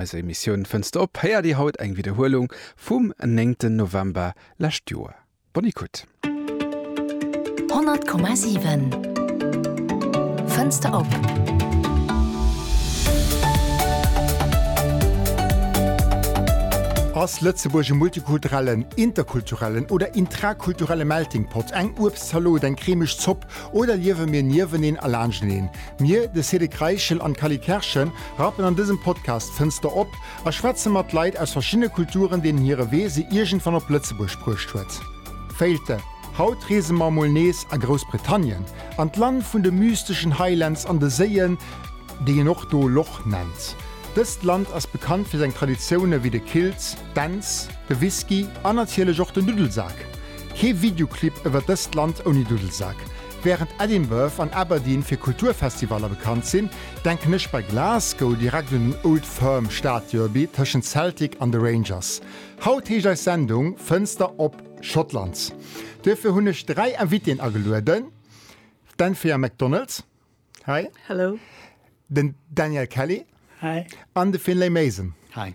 Eiser Emissioun Fënster op héiert Dir haut eng Widderhuelung vum 9 ten November lescht Joer. Bonne écoute! 100,7 Fënster op. Ass Lëtzebuerg e multikulturellen, interkulturellen oder intrakulturelle Melting Pot? Eng Uebstzalot, eng cremeg Zopp oder liewe mir nieweneen a laanschteneen? Mir, de Cédric Reichel an d'Cally Kerschen, Rappen An dësem Podcast fënns de op a schwätze mat Leit aus verschiddene Kulturen, deenen hire Wee se iergendwann op Lëtzebuerg bruecht huet. Féilte Haut reese mer emol nees a Groussbritannien, an d'Land vun de mysteschen Highlands an de Séien, déi een och do Loch nennt. Dëst Land ass bekannt fir seng Traditioune wéi de Kilt, d'Dänz, de Whisky an natierlech och den Duddelsak. Kee Videoclip iwwer dëst Land ouni Duddelsak. Wärend Edinburgh an Aberdeen fir Kulturfestivaller bekannt sinn, Denken ech bei Glasgow direkt un den Old Firm Stadderby tëschent Celtic an de Rangers. Haut heescht eis Sendung Fënster op Schottland. Duerfir hunn ech 3 Invitéen agelueden, d'Anthea McDonald, Hei. Hello. Den Daniel Kelly. Hei. An de Finlay Mason. Hei.